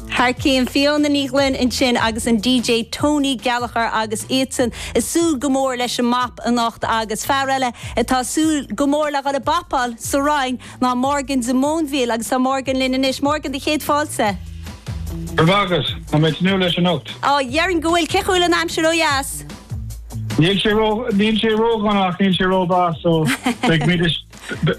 Thar cionn, Fiona Ní Ghlinn ansin agus an DJ Tony Gallagher agus iadsan ag súil go mór leis an mbap anocht agus fear eile atá ag súil go mór le dhul ag bapáil sa Rinn ná Morgan de Móinbhíol agus tá Morgan linn anois. Morgan, do chéad fáilte. Go raibh maith agat. Tá mé ag tnúth leis anocht. Á, déarfainn go bhfuil. Cén chaoi a bhfuil an aimsir ó dheas? Níl sé ró, níl sé ródhona ach níl sé rómhaith so beimid ag,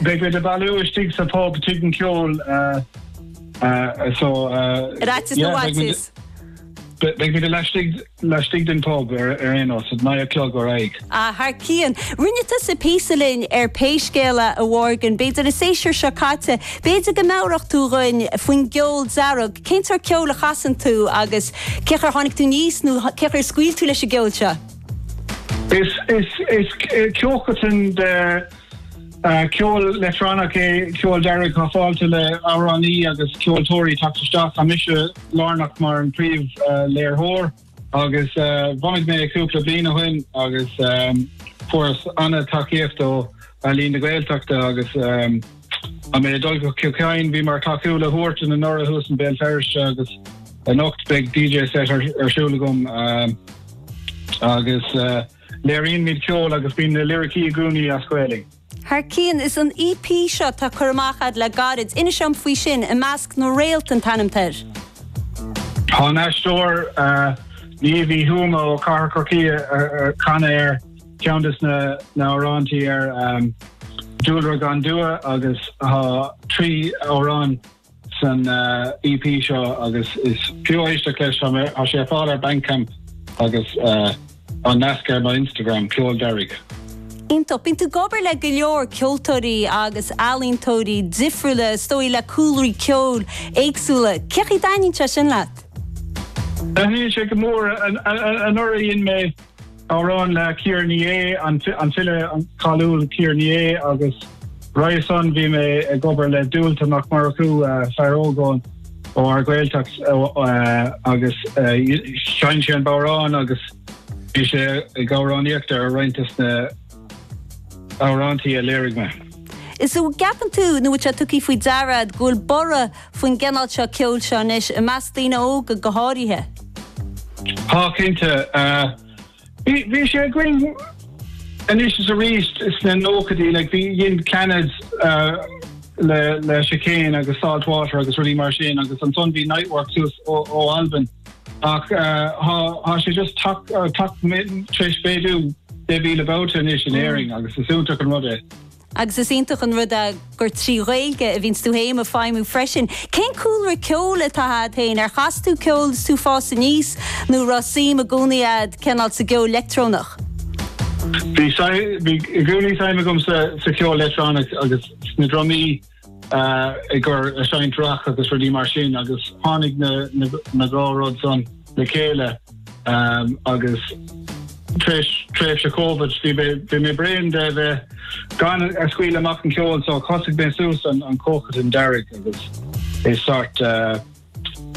beimid ag bailiú istigh sa phub Tigh an Cheoil. Uh, so, uh, Ráiteas nó yeah, beidh muid- ráiteas? Beidh muid laistigh laistigh den pub ar ar aon nós, óna naoi a chlog ar aghaidh. Ah, thar cionn. Rinne tusa píosa linn ar Pé Scéal É, a Mhorgan. B'fhéidir an séasúr seo caite, b'fhéidir go meabhródh tú dhuinn faoin gceol dearg. Cén tsórt ceoil a chasann tú agus cén chaoi ar tháinig tú níos nó th- cén chaoi ar scaoil tú leis an gceol seo? Is is is eh, ceolchoirm de Ceol leictreonach é Ceol Dearg atá fáilte le amhránaí agus ceoltóirí teacht isteach. Tá mise lárnach mar an príomhléiritheoir agus bhunaigh mé é cúpla bliain ó shin agus fuaireas an-tacaíocht ó Ealaín na Gaeltachta agus tá mé ag dul go Cill Chadhain. Bhí mé ag tacú le Huartan anuraidh thuas in Béal Feirste agus anocht beidh DJ set ar siúl agam agus. Léiríonn muid ceol agus bíonn na liricí i gcónaí as Gaeilge. Thar cionn! Is an EP seo atá curtha amach ad le gairid. Inis dom faoi sin, I Measc na Réalt an t-ainm atá air. Tá an aisteoir Niamh Uí Thuama ó Cathair Chorcaí ag canadh air, ceann des na hamhráintí ar Dúlra gan Dua agus tá trí amhrán san EP seo agus is fiú éisteacht leis. Tá sé ar fáil ar Bandcamp agus an nasc ar mo Instagram, Ceol Dearg. Iontach. Bíonn tú ag obair le go leor ceoltóirí agus ealaíontóirí difriúla, is dóigh, le cúlraí ceoil éagsúla. Cén chaoi a dtaitníonn sé sin leat? Taitníonn sé go mór. Anuraidh dhein mé. Amhrán le Ciara Ní É, an file cáiliúil Ciara Ní É, agus roimhe san, bhí mé ag obair le Dualta Mac Murchú, fear óg ó ár Ghaeltacht, agus sheinn sé an bodhrán agus bhí sé ag amhránaíocht ar roinnt des na. hamhráintí a léirigh mé. Is an gceapann tú, nó an bhfuil sé tugtha faoi deara agat, go bhfuil borradh faoin gcineál seo ceoil seo anois, i measc daoine óga go háirithe? Tá cinnte. Bhí sé againn anois is arís sna nóchaidí, like bhí, dhein Clannad le le Chicane agus Saltwater agus rudaí mar sin agus ansan bhí Niteworks suas ó Albain. Ach tá sé just tar éis méadú deich míle babhta anois in Éirinn agus is iontach an rud é. Agus is iontach an rud é gur trí Ghaeilge a bhíonns tú fhéin ag feidhmiú freisin. Cén cúlra ceoil atá a'd fhéin? Ar chas tú ceol is tú ag fás aníos nó raibh suim i gcónaí a'd cineál sa gceol leictreonach? Bhí i gcónaí suim agam sa cheol leictreonach agus sna drumaí. ag cur is ag seinnt rac agus rudaí mar sin agus tháinig na na dhá rud san le chéile agus tar éis tréimhse Covid bhí mé bhí mé bréan de a bheith gan a scaoileadh amach an ceol so thosaigh mé suas an an comhchoiteann Dearg agus é sort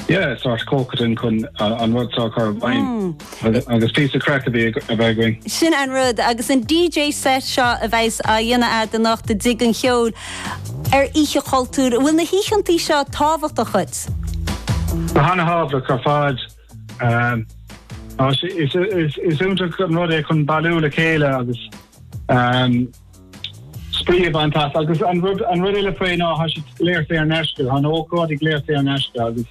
Yeah, sórt ócáidí chun an rud seo a chur i bhfeidhm. Mm. Agus píosa craic a bheith againn. Sin an rud, agus an DJ set seo a bheas á dhéanamh a'd anocht i dTigh an Cheoil ar Oíche Chultúir. An bhfuil na hoícheantaí seo tábhachtach dhuit? Tá an-thábhachtach ar fad. Um, is iontach an rud é chun bailiú le chéile agus um, Spraoi a bhaint as. Agus an rud an rud eile faoi ná thá sé go léir saor in aisce. Tá na hócáidí go léir saor in aisce agus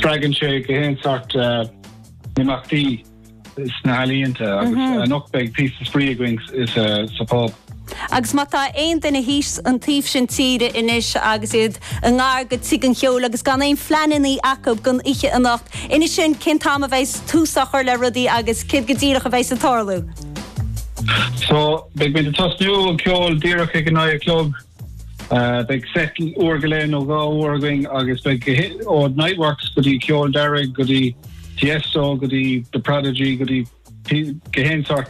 spreagann sé gach aon sort imeachtaí sna healaíonta agus anocht beidh píosa spraoi againn sa phub. Agus má tá aon duine thíos an taobh sin tíre anois agus iad i ngar go Tigh an Cheoil agus gan aon phleanannaí acu don oíche anocht, inis dhúinn cén t-am a bheidh tús á chur le rudaí agus céard go díreach a bheidheas ag tarlú. So, beidh muid ag tosnú an ceol díreach ag a naoi a chlog. Beidh set uair go leith nó dhá uair againn agus beidh ó Niteworks go dtí Ceol Dearg go dtí Tiesto go dtí The Prodigy go dtí gach aon sort.